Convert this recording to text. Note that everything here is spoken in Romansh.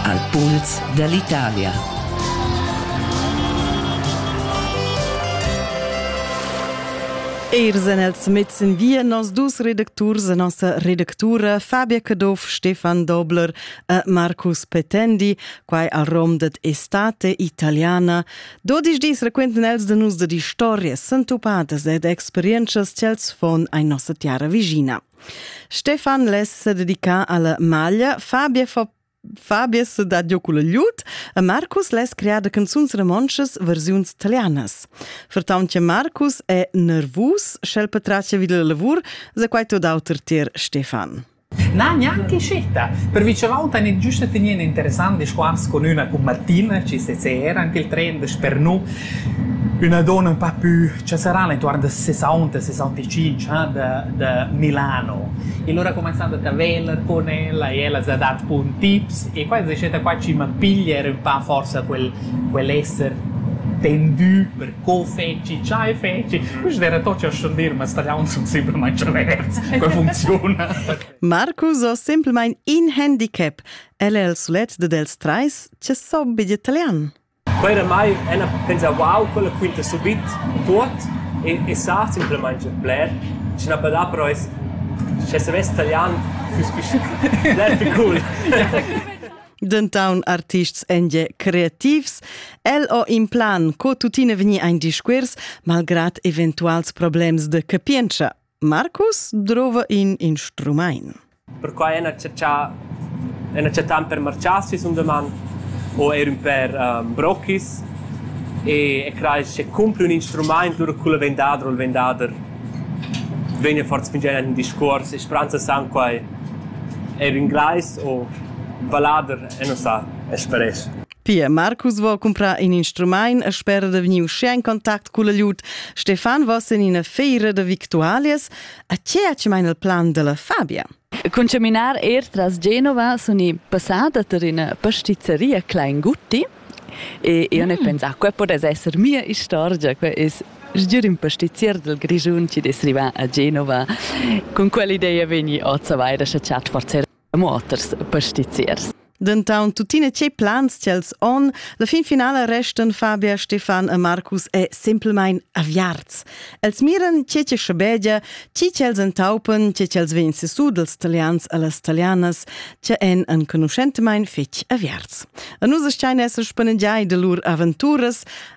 Al puls dall'Italia. Eir sen els mets in via nos dus redacturs e nossa redactura Fabia Caduff, Stefan Dobler e Marcus Petendi, quai al rom det Estate Italiana. Dodisch dis requenten els de nus de di stories sentupadas ed experiences ch'els fon ai nossa tiara vigina. Stefan les se dedica alla maglia, Fabia fa Fabius dat jocu la gliut e Marcus les crea da canzuns romontschas versiuns italianas. Vertaunt che Marcus è nervus, sch'el patracia vid la lavur, se quai tot auter tier Stefan. Na, neanche sceta. Per vice volta ne giusta tenere interessante squars con una con Martina, ci se era anche il trend per nu Üna donna ün pa pü chasarana intuorn da sesaunt e sessantacinc ha da da Milano. E lura cumanzand a taveller cun ella e ella s'ha dat bun tips e qua es riuscita qua chi m'ha piglia er ün pa forsa quel quel esser tendü per co fetschi, chai fetschi. Quist era tot cha schon dir, ma staliauns sun simplamaing chaverts. Quel funziuna. Marcus ho simplamaing in handicap. El è il sulet dad els trais che so be italian. Quei ramai ella pensau uau quella quinta subit tuot e e sa simplamaing gnanc bler, schi na podà però es sche savess talian füss fich bler più cool. Dentaun artists èn gie creativs. El ho in plan co tuttina vegnir ein discuors malgrad eventuals problems de capientscha. Marcus drova in instrumaint. Perquai han acceptà han acceptà per marchar sis un deman o er ün per um, brochis e, e crai che cumpli un instrumaint lura cul vendader o il vendader vegna forza fingià in discuors e spranza san quai er ün gleis o vallader e non sa, es per es. Pia Marcus vo cumprar in instrumaint e spera da vegnir uschè in contact cul agliut Stefan vos in ina feira da victualias. A che ha ci maina il plan della Fabia? Cun caminar er tras Genova sun i passada tar ina pastizzeria Kleingutti e io mm. ne pensà, quella potesse essere mia istorgia, quella es sgür in pastizier del Grischun ci des rivà a Genova. Con quell'idea vegni oz a vaida scha chat forzer e muoters e pastiziers. Denton tuttina tgei plans tiels on? La fin finala restan Fabia, Stefan e Marcus e semplmein aviarts. Els miran tge che schabegia, tgi ch'els entaupen, tge ch'els vegn sesù dels talians a las talianas, che en enconuschentmain fetg aviarts. A nus stein esser spannegiai de lur aventuras,